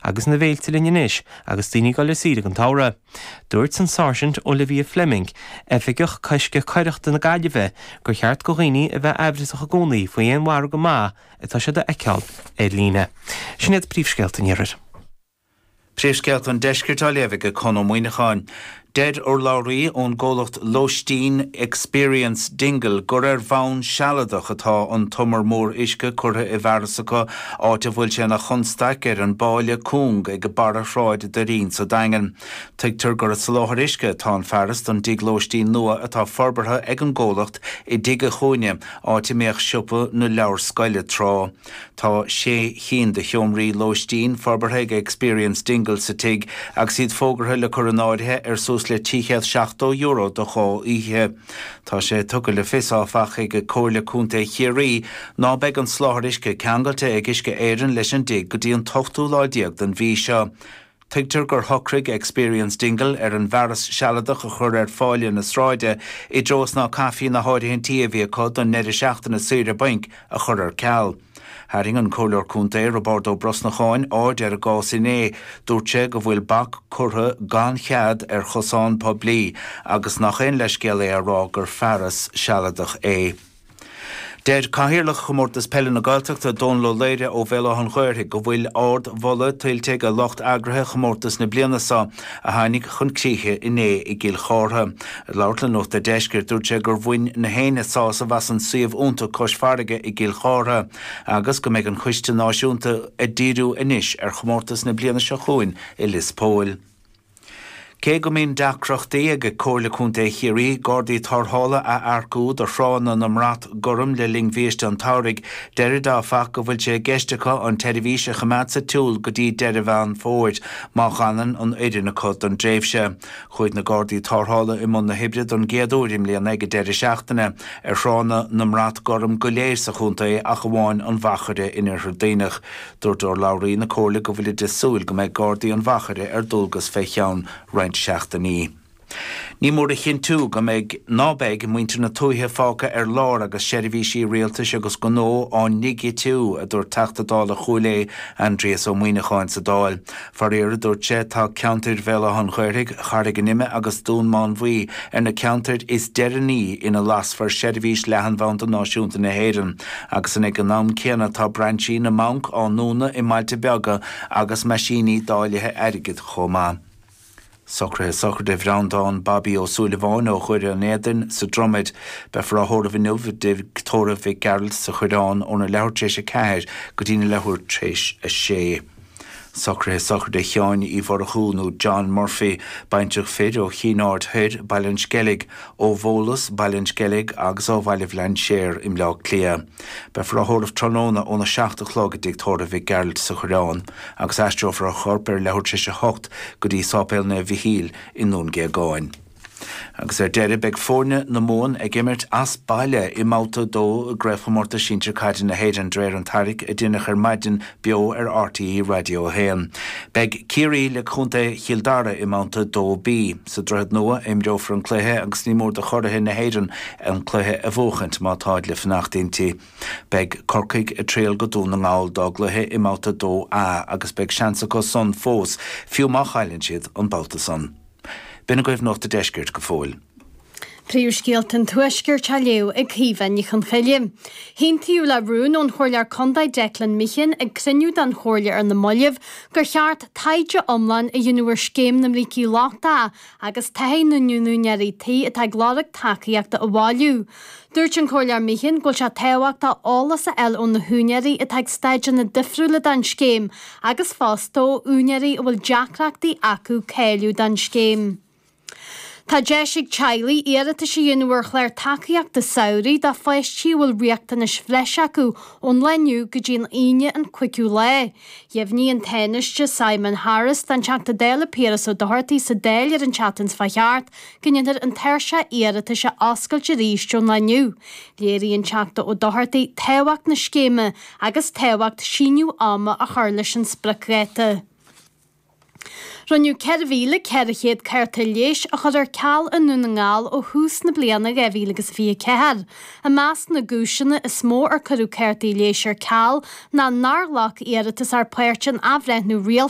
agus na bhféilte linn anois agus daoine go leor ag dul thar sáile sa samhradh. Dúirt an Sáirsint Olivia Fleming, Oifigeach Coiscthe Coireachta na Gaillimhe, gur cheart do dhaoine a bheith amhrasach i gcónaí faoi aon mhargadh maith atá siad a fheiceáil ar líne. Sin iad príomhscéalta an iarthair. Príomhscéalta an Deiscirt á léamh ag Conn Ó Muíneacháin. Deir urlabhraí ón gcomhlacht lóistín Experience Dingle gur ar bhonn sealadach atá an t-umar mór uisce curtha i bhfearas acu, áit a bhfuil sé ina chonstaic ar an bpábháil chúng ag barra Shráid Eoin sa Daingean. Tuigtear gur ag soláthar uisce atá an fearas don dtigh lóistín nua atá forbartha ag an gcomhlacht i dTigh a' Chúinne, áit a mbíodh siopa na leabharscoile tráth. Tá sé chinn de sheomraí lóistín forbartha ag Experience Dingle sa tigh agus iad fógartha le cur in áirithe ar suas le €370 do dhá oíche. Tá sé tugtha le fios, áfach, ag Comhairle Contae Chiarraí ná beidh an soláthar uisce ceangailte ag Uisce Éireann leis an dtigh go dtí an t-ochtú lá déag den mhí seo. Tuigtear gur shocraigh Experience Dingle ar an bhfearas sealadach a chur ar phábháil na sráide i dtreo is ná caithfí na háirithintí a bhí acu don ndeireadh seachtaine saoire bainc a chur ar ceal. Tharraing an Comhairleoir Contae, Roibeárd Ó Brosnacháin, aird ar an gcás inné. Dúirt sé go bhfuil bac curtha gan chead ar chosán poiblí agus nach aon leithscéal é a rá gur fearas sealadach é. Deir Cathaoirleach Chomórtas Peile na Gaeltachta, Dónal Ó Laoire ó Bhéal Átha'n Ghaorthaidh go bhfuil ardmholadh tuillte ag a lucht eagraithe chomórtas na bliana seo a tháinig chun críche inné i gCill Chártha. Ag labhairt le Nuacht a' Deiscirt, dúirt sé gur bhain gach éinne sásamh as an suíomh iontach cois farraige i gCill Chártha agus go mbeidh an Coiste Náisiúnta ag díriú anois ar chomórtas na bliana seo chugainn i Lios Póil. Cé go mbíonn deacrachtaí ag Comhairle Contae Chiarraí Gardaí Tarrthála a earcú do thránna na mBrat Gorm le linn bhiaiste an tsamhraidh, deirid áfach go bhfuil sé i gceist acu an tseirbhís a choimeád sa tsiúl go dtí deireadh Mheán Fómhair má fhanann an fhoireann acu don dtréimhse. Chuaigh na Gardaí Tarrthála i mbun na hoibre don gcéad uair i mbliana ag an deireadh seachtaine ar thránna na mBrat Gorm go léir sa chontae ach amháin an Mhachaire in Iarthar Duibhneach. Dúirt urlabhraí na Comhairle go bhfuilid ag súil go mbeidh Gardaí an Mhachaire ar dualgas fé cheann roinnt seachtainí. Ní mór a chinntiú go mbeidh, ná beidh, muintir na tuaithe fágtha ar lár agus seirbhísí rialtais agus gnó á ndigitiú, a dúirt Teachta Dála Chúil Aodha, Aindrias Ó Muíneacháin sa Dáil. Faraor, a dúirt sé, tá ceantair Bhéal Átha an Ghaorthaidh, Charraig an Ime agus Dhún Mánmhaí ar na ceantair is deireanaí ina lasfar seirbhís leathanbhanda náisiúnta na hÉireann agus an ag an am céanna tá brainsí na mbanc á ndúnadh i mbailte beaga agus meaisíní dáilithe airgid chomh maith. Socraithe Sochraide Bhreandáin Babaí Ó Súilleabháin ó Dhoire an Éadain sa Dromaid. Beifear á thórramh inniu i dTigh Tórraimh Mhic Gearailt sa Choireán óna leathuair tar éis a ceathair go dtí leathuair tar éis a sé. Socraithe Sochraide Sheáin Uí Mhurchú nó John Murphy, baintreach fir ó Chinn Aird Thoir, Baile an Sceilg, ó Bhólus, Baile an Sceilg agus ó Bhaile Bhlainséar i mBleá Cliath. Beifear á thórramh tráthnóna óna seacht a chlog i dTigh Tórraimh Mhic Gearailt sa Choireán. agus aistreofar a chorp ar leathuair tar éis a hocht go dtí Sáipéal Naomh Mhichíl i nDún Géagáin. Agus ar deireadh, beidh foirne na Mumhan ag imirt as baile i mBabhta 2 i gCraobhchomórtas Sinsir Caide na hÉireann d'réir an tairric a déanadh ar maidin beo ar RTÉ Raidió 1. Beidh Ciarraí le Contae Chill Dara i mBabhta 2B. Sa Droichead Nua a imreofar an cluiche agus ní mór do churaithe na hÉireann an cluiche a bhuachaint má táid le fanacht inti. Beidh Corcaigh ag triall go Dún na nGall dá gcluiche i mbabhta 2A agus beidh seans acu san fós, fiú má chailleann siad an babhta san. B'in agaibh Nuacht a' Deiscirt go fóill. Príomhscéalta an Tuaiscirt á léamh ag Caoimhe Ní Chonghaile. Aontaíodh le rún ón Chomhairleoir Condae Declan Meehan ag cruinniú den Chomhairle ar na mallaibh gur cheart taighde iomlán a dhéanamh ar Scéim na mBrící Lochta agus taithí na n-úinéirí tí atá ag lorg tacaíochta a bhailiú. Dúirt an Comhairleoir Meehan go bhfuil sé tábhachtach eolas a fháil ó na húinéirí atá ag staideanna difriúla don scéim agus fosta ó úinéirí a bhfuil deacrachtaí acu cáiliú don scéim. Tá deis ag teaghlaigh iarratais a dhéanamh ar chlár tacaíochta samhraidh do pháistí a bhfuil riachtanais bhreise acu ón lá inniu go dtí an Aoine an 5ú lá Dheimhnigh an Tánaiste Simon Harris don Teachta Dála Piaras Ó Dochartaigh sa Dáil ar an tseachtain seo thart go ndéanfar an tairseach iarratais a oscailt arís ón lá inniu. Léirigh an Teachta Ó Dochartaigh tábhacht na scéime agus tábhacht síneadh ama a chur leis an spriocdháta. Rinneadh 4,400 cárta leighis a chur ar ceal i nDún na nGall ó thús na bliana 2024. I measc na gcúiseanna is mó ar cuireadh cártaí leighis ar ceal ná nár ghlac iarratasóir páirt in athbhreithniú rialta,